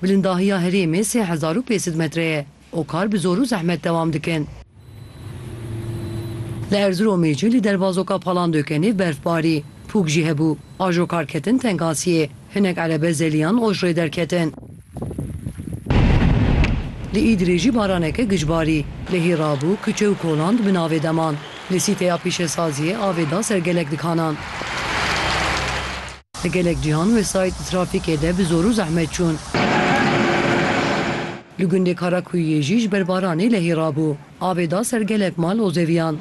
Bilindahiya herêmê sê hezar û pêsed metre ye û kar bi zor û zehmet dewam dikin. Li Erziromê jî li dervazoka Palandökenê berfbarî, pûk jî hebû. Ajokar ketin Tengasiyê. Hinek erebe zeliyan Ojrê derketin. Li Îdirê jî baraneke giç barî. Lehî rabû, kuçe û kolan di bin avê de man. Li sîteya pîşesaziyê avê da ser gelek dikanan. Li gelek cîhan wesayît di trafîkê de bi zor û zehmet çûn. Li gundê Karakuyiyê jî ji ber baranê lehî rabû. Avê da ser gelek mal û zeviyan.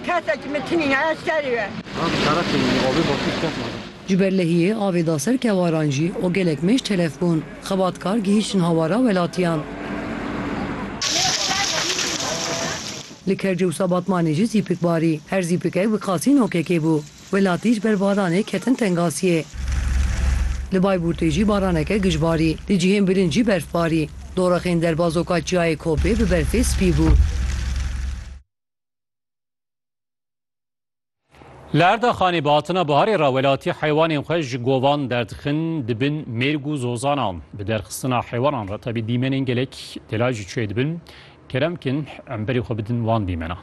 Kesekî min tinî ye, eskerî ye. Ji ber lehiyê avê da ser kewaran jî û gelek mêj telef bûn, xebatkar gihîştin hawara welatiyan. Li Kerc û Sabatmanê jî zîpik barî. Her zîpikek bi qasî nokekê bû. Welatî ji ber baranê ketin tengasiyê. Li Bayburtê jî baraneke gij barî. Di cihên bilind jî berf barî. Dorexên derbazoka Çiyayê Kopê bi berfê spî bû. Li Erdaxanê bi hatina biharê re welatî heywanên xwe ji govan derdixin dibin mêrg û zozanan. Bi derxistina heywanan re tevî dîmenên gelek delay jî çê dibin. Kerem kin em berê xwe bidin wan dîmenan.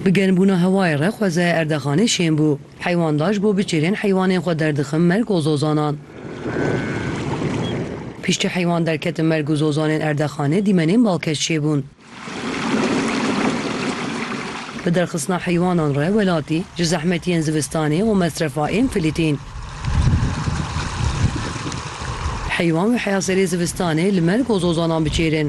Bi germbûna hewayê re xwezaya Erdaxanê şên bû. Heywan da ji bo biçêrên heywanên xwe derdixim merg û zozanan. Piştî heywan derketin merg û zozanên erdexanê dîmenên balkêş çêbûn. Bi derxistina heywanan re welatî ji zehmetiyên zivistanê û mesrefa ên Filîtîn. Heywan wê heya serê zivistanê li merg û zozanan biçêrin.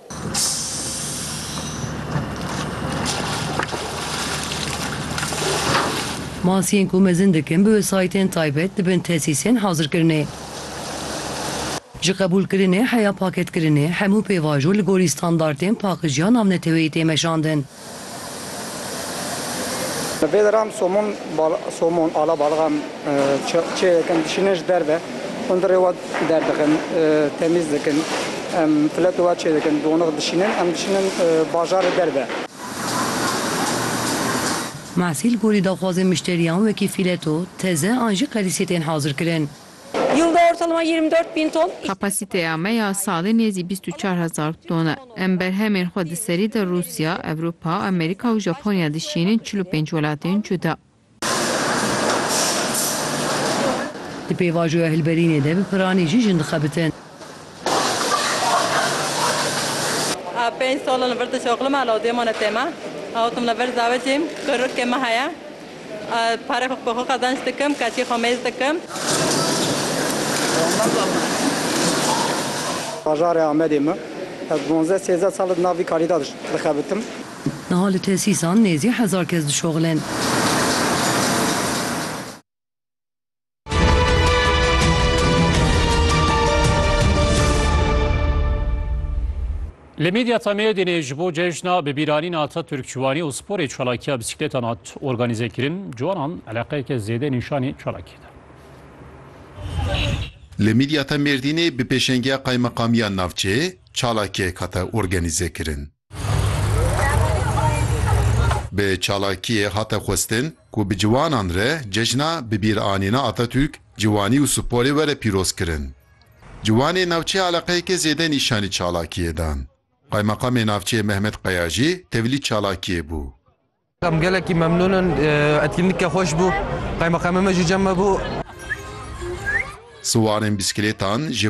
Masiyên ku mezin dikin bi wesayîtên taybet dibin tesîsên hazirkirinê. Ji qebûlkirinê heya paketkirinê, hemû pêvajo li gorî standartên paqijiya navneteweyî tê meşandin. Bi vê deran somon somon ala baliqan çêyê dikin dişînin ji derve hundirê we derdixin temîz dikin em filetê we çê dikin doniq dişînin em dişînin bajarê derve. Mehsîl gorî daxwazên mişteriyan wekî fîleto, teze an jî qelîsiyê tên hazirkirin. Yılda ortalama yirmi dört bin ton. Kapasiteya me ya salê nêzî bîst û çar hezar ton e. Em berhemên xwe di serî de Rûsya, Ewropa, Amerîka û Japonya dişînin çil û pênc welatên cuda. Di pêvajoya hilberînê de bi piranî jî jin dixebitin. A pênc sal li vir dişoxlim a lawdê mane tê me. Awtim li vir zawecîm, kurikê me heye. A parê xwe bi xwe qezenc dikim, keçê xwe mêz dikim. Bajarê Amedê me. Ez duwazdeh sêzdeh sal e di nav vî karî de dixebitim. Niha li tesîsan nêzî hezar kes dişoxilin. Li medya Tameyê dînê ji bo cejna bi bîranîna Atatürk ciwanî û sporê çalakiya bisiklêtan hat organîzekirin. Ciwanan eleqeyeke zêde nîşanî çalakiyê da. Li medya Tamêrdînê bi pêşengiya qaymeqamiya navçeyê çalakiyek hate organîzekirin. Bi çalakiyê hate xwestin ku bi ciwanan re cejna bibîranîna Atatürk, ciwanî û sporê were pîrozkirin. Ciwanê navçeyê eleqeyekê zêde nîşanî çalakiyê dan. Qaymaqamê navçeyê Mehmet Qaya jî tevlî çalakiyê bû. Em gelekî memnûn in, etkinlîkê xweş bû, qaymaqamê me jî cem me bû. Siwarên bîskilêtan ji